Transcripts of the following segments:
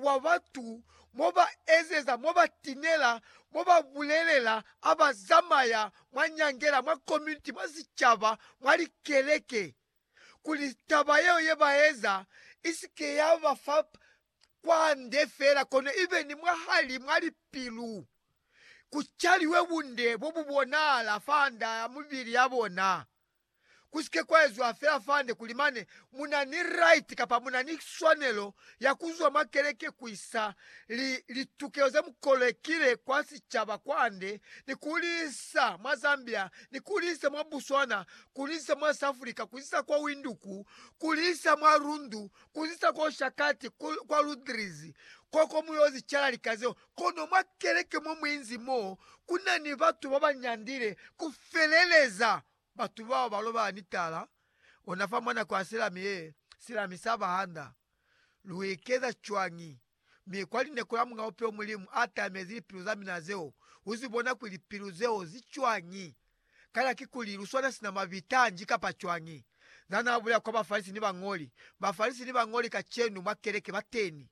wa batu, mo ba ezeza, mo ba tinela, mo ba bulelela, a ba zamaya mwa nyangela, mwa community, mwa sicaba, mwa likeleke, kuli taba yeo ye ba eza isike ya ba fa kwande fela, kono ibe ni mwahali mwa lipilu, ku caliwe bunde bo bu bonahala fa nda ya mibili ya bona. kusike kwa eziwa fela fande kuli mane muna ni right kapa muna ni swanelo ya kuzwa mwa keleke kuisa li, litukelo ze mukolekile kwa sicaba kwande ni kuliisa mwa Zambia, ni kuliisa mwa Botswana, kuliisa mwa Safrika, kuliisa kwa Winduku, kuliisa mwa Rundu, kuliisa kwa Oshakati, ku, kwa Ludriz, koko muyozi cala lika zeo. Kono mwa keleke mo muinzi mo, kuna ni batu babanyandile kufeleleza Batu bao ba lobala ni tala ona fa mwa nako ya silami ye silami sa bahanda. Lu ikeza cwañi? Mi kwa lineko la mwa bupilo Mulimu a tamezi lipilu za mina zeo u zi bona kuli lipilu zeo zi cwañi? Kana kikuli lu swana sina mabitanji kapa cwañi? Za na bulela kwa Bafalisi ni bañoli. Bafalisi ni bañoli kacenu mwa keleke ba teni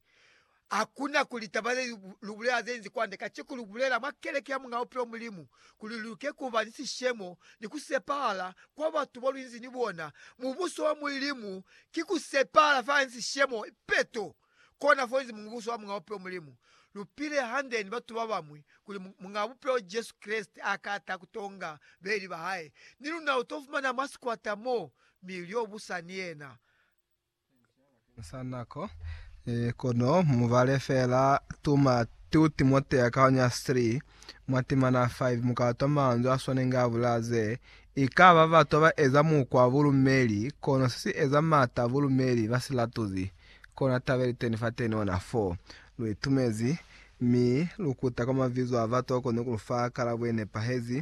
Hakuna kuli taba ze lu bulela ze inzi kwande, kaciku lu bulela mwa keleke ya Muñ'a Bupilo Mulimu, kuli lu ke kuba ni sishemo ni ku sepahala kwa batu bo lu inzi ni bona. Mubuso wa Mulimu ki ku sepahala fela ni sishemo, ipeto. Kona fo inzi Mubuso wa Muñ'a Bupilo Mulimu. Lu pile hande ni batu babañwi kuli Muñ'a Bupilo Jesu Kreste a ka ta ku to nga beeli ba hae, ni luna lu to fumana mwa sikwata mo, mi lyo busa ni yena. Sa nako e, kono mubale feela tuma 2 Timotea kaonya 3 mwa timana 5 mukatwa manzwi aswanengi a bulaa ze, Ikaba batwa ba eza mukwa wa bulumeli, kono se si eza mata a bulumeli ba si latuzi, kona taba ili teni fateni ona, fo lu itumezi, mi lu kuta kwa mabizo a batwa kono ku lu fa kalabo ye nepahezi,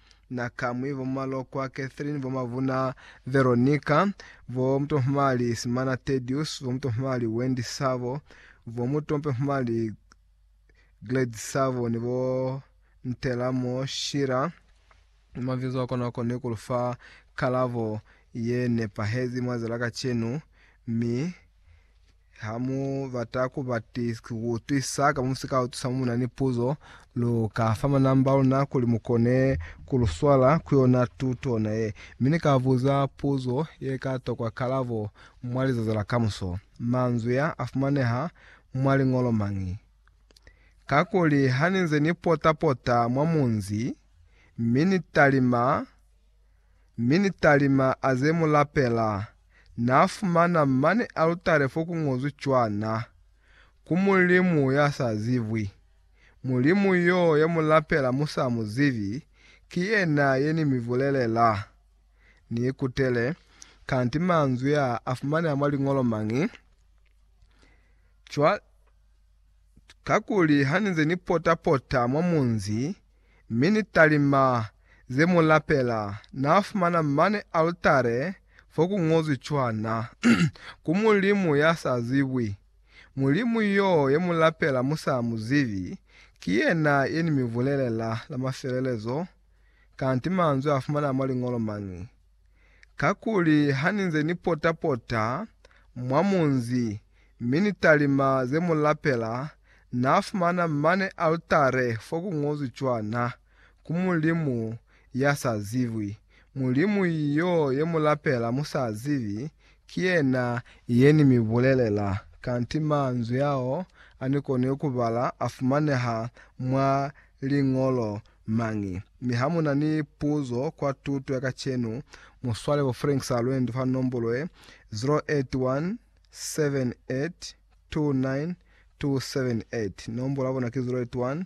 Na Kamwi, bo Malokwa Catherine, bo Mabuna Veronica, bo Mutomhumali Simana Tedious, bo Mutomhumali Wendy Sabo, bo Mutomhumali Gladys Sabo ni bo Ntelamo Shira. Mabizo a kona koni ku lu fa kalabo ye nepahezi mwa za la kacenu, mi Ha mu bata ku utwisa ka mo si ka utwisa mo mu na ni puzo, lu ka fa manamba a luna kuli mu kone ku lu swala ku yona tuto ona ye. Mi ni ka buza puzo ye ka tokwa kalabo mwa lizazi la kamuso. Manzwi a a fumaneha mwa liñolo mañi? Kakuli ha ni nze ni pota-pota mwa munzi, mi ni talima, mi ni talima a ze mu lapela, na fumana mane alutare fo ku ngozwi cwana, Ku Mulimu ya sa zibwi. Mulimu yo ye mu lapela mu sa mu zibi, ki yena ye ni mi bulelela. Ni ikutele, kanti manzwi a a fumaneha mwa liñolo mañi? Cwale, kakuli ha ni nze ni pota-pota mwa munzi, mi ni talima ze mu lapela, na fumana mane altare fo ku ngozwi cwana, Ku Mulimu ya sa zibwi. Mulimu yo ye mu lapela mu sa mu zibi, ki yena ye ni mi bulelela la mafelelezo, kanti manzwi a fumanaa mwa Liñolo mañi? kakuli haninze ni pota-pota mwa munzi mi ni talima ze mu lapela, Na fumana mane altare fo ku ñozwi cwana, Ku Mulimu ya sa zibwi. Mulimu yo ye mu lapela mu sa zibi, ki yena ye ni mi bulelela. Kanti manzwi ao a ni koni ku bala a fumaneha mwa Liñolo mañi. Mi ha mu na ni puzo kwa tuto ya kacenu, mu swale bo Frank Salwendo fa nombolo ye, 0817829278, nombolo ya bona ki 0817829278.